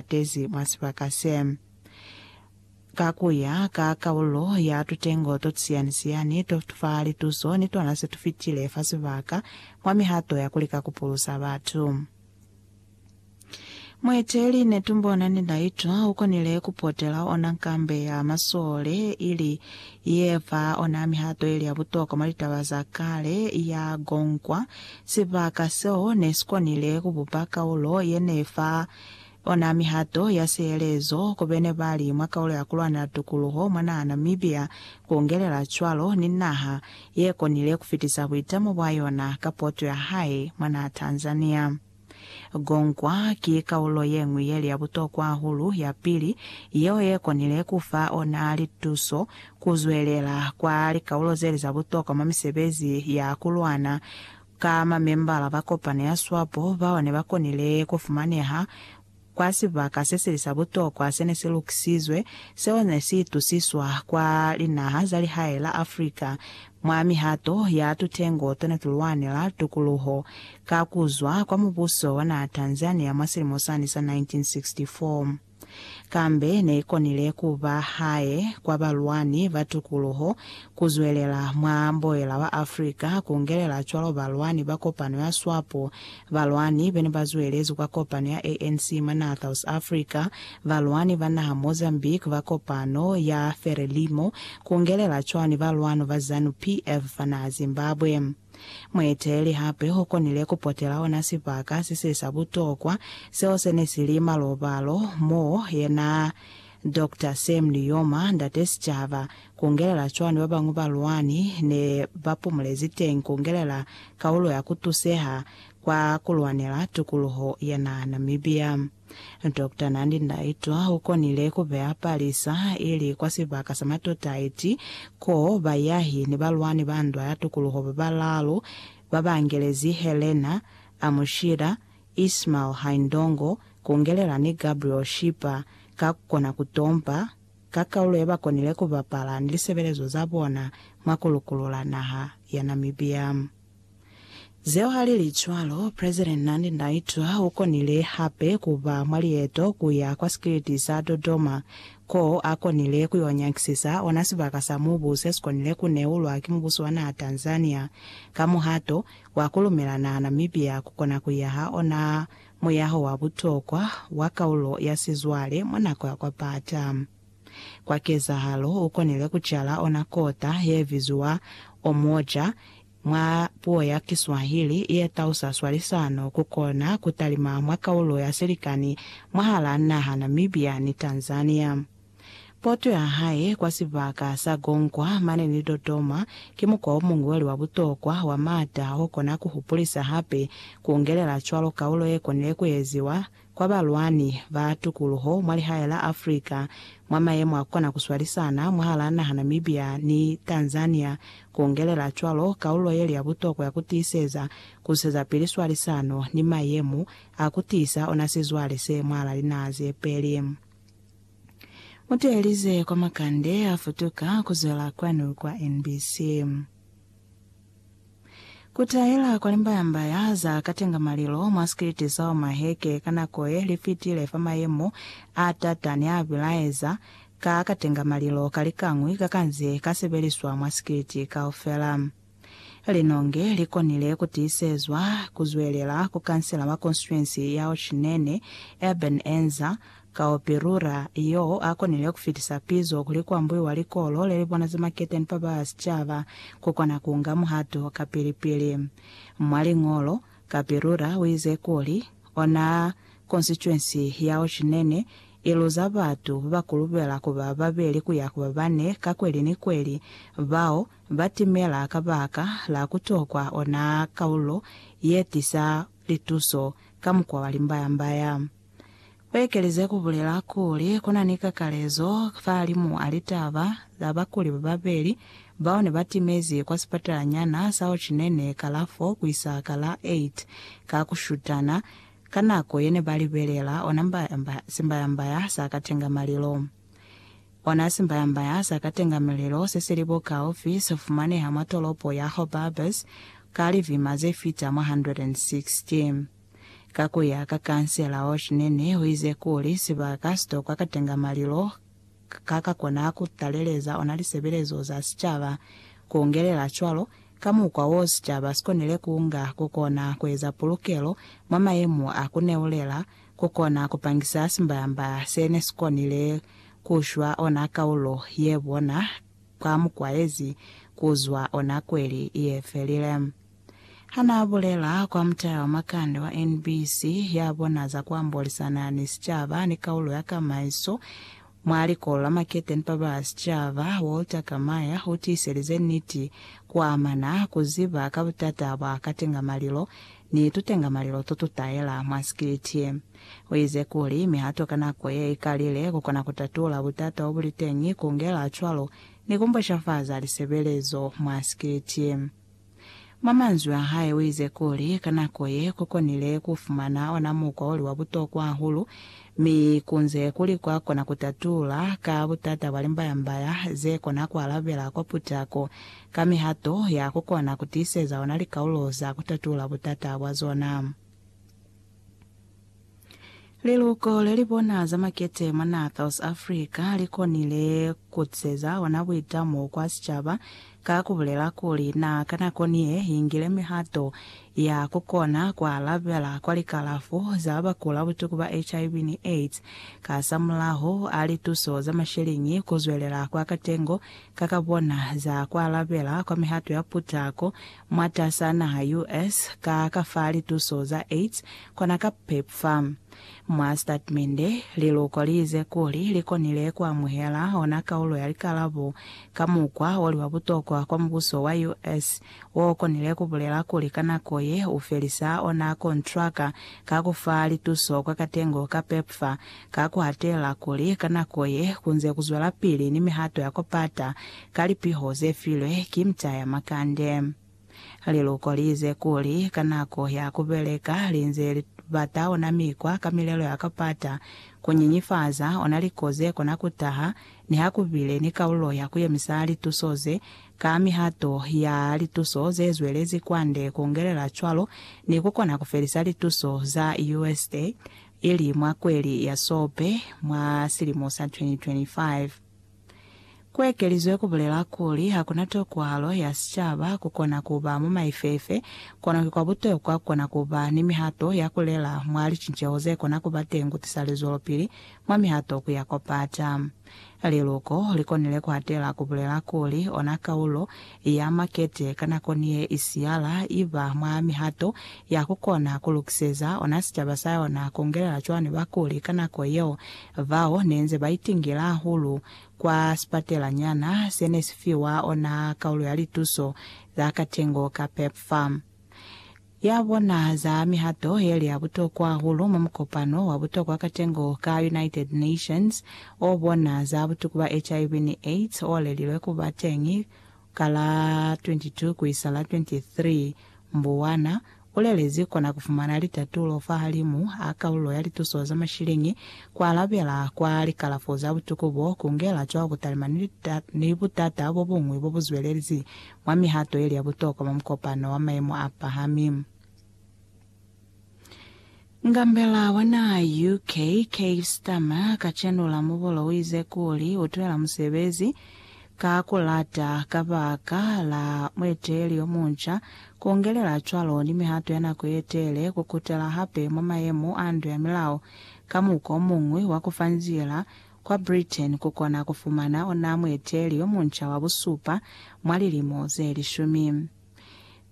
tezi mwa sibaka se. Ka ku ya ka kaulo ya tutengo to tusiyani-siyani to fa lituso ni tona se tu fitile fa sibaka mwa mihato ya ku lika ku pulusa batu, mueteleli Netumbona Ninaitwa u konile ku potela ona nkambe ya masole ili ye fa ona mihato ili ya butokwa mwa litaba za kale ya Gongwa. Sibaka seo ne si konile ku bupa kaulo ye ne fa Ona mihato ya sihelezo ku bene bali mwa kaulo ya kulwanela tukuluho mwa naha Namibia, ku ungelela cwalo ni naha ye konile kufitisa buitamo bwa yona ka poto ya hae mwa naha Tanzania. Gongwa ki kaulo yeñwi yeli ya butokwa hahulu ya pili yeo ye konile kufa ona lituso kuzwelela kwa likaulo zeli za butokwa mwa misebezi ya kulwana, Ka mamembala ba kopano ya swapo bao ne ba konile ku fumaneha kwa sibaka se sili sa butokwa se ne si lukisizwe seo ne si itusiswa kwa linaha za lihae la Afrika mwa mihato ya tutengo to ne tu lwanela tukuluho ka ku zwa kwa mubuso wa naha Tanzania mwa silimo sani sa 1964. Kambe ne i konile ku ba hae kwa balwani ba tukuluho, ku zwelela mwa boela wa Afrika, ku ngelela cwalo balwani ba kopano ya SWAPO, balwani be ne ba zwelezwi kwa kopano ya ANC mwa naha South Africa, balwani ba naha Mozambique ba kopano ya Frelimo, ku ngelela cwalo ni balwani ba Zanu PF fa naha Zimbabwe. Mueteleli hape u konile ku potela ona sibaka se se sa butokwa seo se ne si li malobalo, mo yena Doctor Sam Nujoma, ndate sicaba, kungelela cwani ba bañwi balwani ne ba pumulezi teñi kungelela kaulo ya ku tuseha kwa ku lwanela tukuluho ya naha Namibia. Doctor Nandi Ndaitwah u konile ku beya palisa i li kwa sibaka sa Matotaiti ko bayahi ni balwani ba ndwa ya tukuluho ba balaalu ba ba angelezi Helena Amushira, Ismail Haindongo, Kungelela ni Gabriel Shipa ka ku kona ku tompa ka kaulo ye ba konile ku bapala ni lisebelezo za bona mwa ku lukulula naha ya Namibia. Zeo ha li li cwalo, President Nandi Ndaitwah u konile hape ku ba mwa lieto ku ya kwa sikiliti sa Dodoma, ko a konile ku y'o nyakisisa ona sibaka sa mubu se si konile ku neulwa ki mubuso wa naha Tanzania ka muhato wa ku lumela naha Namibia ku kona ku yaha ona muyaho wa butokwa wa kaulo ya sizwale mwa nako ya kwapata. Kwa kezahalo, u konile ku cala ona kota ye biziwa Omoja, mwa puo ya Kiswahili, ye tausa swalisano ku kona ku talima mwa kaulo ya silikani mwahal'a naha Namibia ni Tanzania. Poto ya hae kwa sibaka sa Gongwa mane ni Dodoma ki mukwa o muñweli wa butokwa wa m'ata o kona ku hupulisa hape ku ngelela cwalo kaulo ye konile ku eziwa kwa balwani ba tukuluho mwa lihae la Africa mwa mayemo a kona ku swalisana mwahalaa naha Namibia ni Tanzania, ku ongelela cwalo kaulo yeli ya butokwa ya ku tiiseza ku zwisezapili swalisano ni mayemo a ku tiisa ona sizwale se mwahalaa linaha ze peli. Mu teelize kwa makande a futuka ku zwela kwanu kwa NBC. Ku tahela kwa limbayambaya za katenga malilo mwa sikiliti sa Omaheke ka nako ye li fitile fa mayemo a t'ata ne a bilaeza ka katenga malilo ka likañwi ka ka nze ka sebeliswa mwa sikiliti kaufela. Linonge li konile ku tiisezwa ku zwelela ku kansela wa konstituensi ya Ochinene, Eben Enza, Ka opirura, yo a konile ku fitisa pizo kuli kwa mbuiwa likolo le li bona za maketeni fa ba sicaba ku kona ku nga muhato ka pili-pili. Mwa liñolo, kapirura u ize kuli, Ona konsituensi ya Ochinene i luza batu ba ba kulubela ku ba babeli ku ya ku ba bane ka kweli ni kweli, bao ba timela kabaka la ku tokwa ona kaulo ye tisa lituso ka mukwa wa limbaya-mbaya. U ekelize ku bulela kuli, Ku na ni kakalezo fahalimu a litaba za bakuli ba babeli bao ne ba timezi kwa sipatalanyana sa Ho Chi Ne Ne ka la 4 ku isa ka la 8 ka ku shutana ka nako ye ne ba libelela ona simbayambaya sa ka tenga malilo. Ona simbayambaya sa ka tenga mililo se si li bo kaufi se fumaneha mwa tolopo ya Hobarbers ka livima ze fita mwa 160. Ka ku ya ka Kansela Oshnen, u ize kuli, Sibaka si tokwa katenga malilo ka ka kona ku taleleza ona lisebelezo za sicaba, ku ungelela cwalo, ka mukwa wo sicaba si konile ku nga, ku kona ku eza pulukelo mwa mayemo a ku neulela, ku kona ku pangisa simbayamba se ne si konile ku shwa ona kaulo ye bona ka mukwa yezi ku zwa ona kweli ye felile. Hanaabulela kwa mutala wa makande wa NBC ya bona za kuambolisana ni sicaba ni kaulo ya kamaiso mwa likolo la makete ni papa ba sicaba, Walter Kamaya utiiselize niti kuamana kuziba ka butata bwa katengamalilo ni tutengamalilo totutaela mwa sikiliti. Uize kuli mihato ka nako ye ikalile kukona kutatula butata bobuliteñi, kungela cwalo ni kumboshafaza lisebelezo mwa sikiliti. Mwa manzwi a hae uize kuli, ka nako ye, ku konile ku fumana ona mukwa oli wa butokwa hahulu, mi kunze kuli kwa kona ku tatula ka butata bwa limbayambaya ze kona ku alabela kwa putako ka mihato ya ku kona ku tiiseza ona likaulo za ku tatula butata bwa zona. Liluko le li bona za makete mwa naha South Africa li konile ku tiseza ona buitamo kwa sicaba ka ku bulela kuli na ka nako ni ye ingile mihato ya ku kona ku alabela kwa likalafo za ba kula butuku ba HIV ni AIDS kasamulaho a lituso za masheleñi ku zwelela kwa katengo ka ka bona za ku alabela kwa mihato ya putako Mwatas'a naha US, ka ka fa lituso za AIDS, kona ka PEP fa. Mwa statimende, liluko liize kuli likonile kuamuhela ona kaulo ya likalabo ka mukwa oli wa butokwa kwa mubuso wa US, okonile kubulela kuli ka nako ye ufelisa ona kontraka ka kufa lituso kwa katengo ka PEPFAR, ka ku hatelela kuli ka nako ye ku nze ku zwelapili ni mihato ya ku pata ka lipiho ze filwe ki Mta ya Makande. Liluko li ize kuli ka nako ya ku beleka li nze li bata ona mikwa ka milelo ya ku pata ku nyinyifaza ona liko ze kona ku taha niha ku bile ni kaulo ya ku yemisa lituso ze ka mihato ya lituso ze zwelezi kwande ku ngelela cwalo ni ku kona ku felisa lituso za usa ili mwa kweli ya Sobe mwa silimo sa 2025. Ku ekelizwe ku bulela kuli ha ku na tokwahalo ya sicaba ku kona ku ba mwa maifefe, kono ki kwa butokwa ku kona ku ba ni mihato ya ku lela mwa licinceho ze kona ku ba teñi ku tisa lizwelopili mwa mihato ku ya kwa pata. Liluko li konile ku atela ku bulela kuli ona kaulo ya makete ka nako ni ye i siyala i ba mwa mihato ya ku kona ku lukiseza ona sicaba sa yona ku ngelela cwani bakuli ka nako yeo bao ne nze ba itingile hahulu kwa sipatelanyana se ne si fiwa ona kaulo ya lituso za katengo ka PEPFAR. ya bona za mihato yeli ya butokwa hahulu mwa mukopano wa butokwa katengo ka United Nations o bona za butuku ba HIV ni AIDS o lelilwe ku ba teñi ka la 22 ku isa la 23 Mbuwana, u lelezi kona ku fumana litatulo fahalimu a kalulo ya lituso za mashiliñi, ku alabela kwa likalafo za butuku bo, ku ngela cwalo butalima ni butata bo buñwi bo bu zwelezi mwa mihato yeli ya butokwa mwa mukopano wa maemo a pahami. Ngambela wa naha ya UK, Keir Starmer, ka chenula mubolo uize kuli utwela musebezi ka kulata kabaka la mueteleli yomunca, kuongelela cwalo ni mihato ya nako yetele kukutela hape mwa maemo a ndu ya milao ka muko omuñwi wa kufa nzila Kwa Britain ku kona ku fumana ona mueteli yo munca wa busupa mwa lilimo ze lishumi.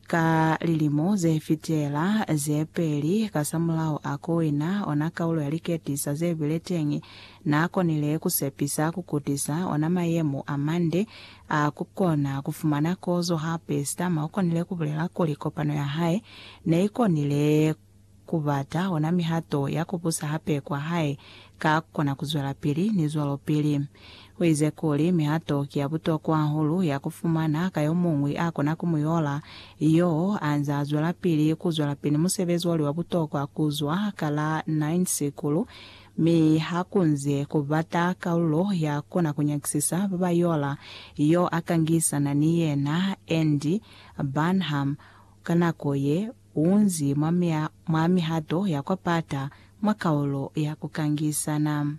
Ka lilimo ze fitela ze peli kasamulaho a ku wina ona kaulo ya liketisa ze bile teñi, n'a konile ku sepisa ku kutisa ona mayemo a mande a ku kona ku fumana kozo. Hape, Starmer u konile ku bulela kuli kopano ya hae ne i konile ku bata ona mihato ya ku busa hape kwa hae ka ku kona ku zwelapili, ni zwalopili. U ize kuli, Mihato ki ya butokwa hahulu ya ku fumana ka yo muñwi a kona ku mu yola, yoo a nze a zwelapili ku zwelapili ni musebezi wa li wa butokwa ku zwa ka la nine sikulu, mi ha ku nze ku bata kalulo ya ku kona ku nyakisisa ba ba yola yo a ka ngisana ni yena, Andy Burnham, ka nako ye. Unzi mwa mihato ya kwa pata mwa kaulo ya ku kangisana.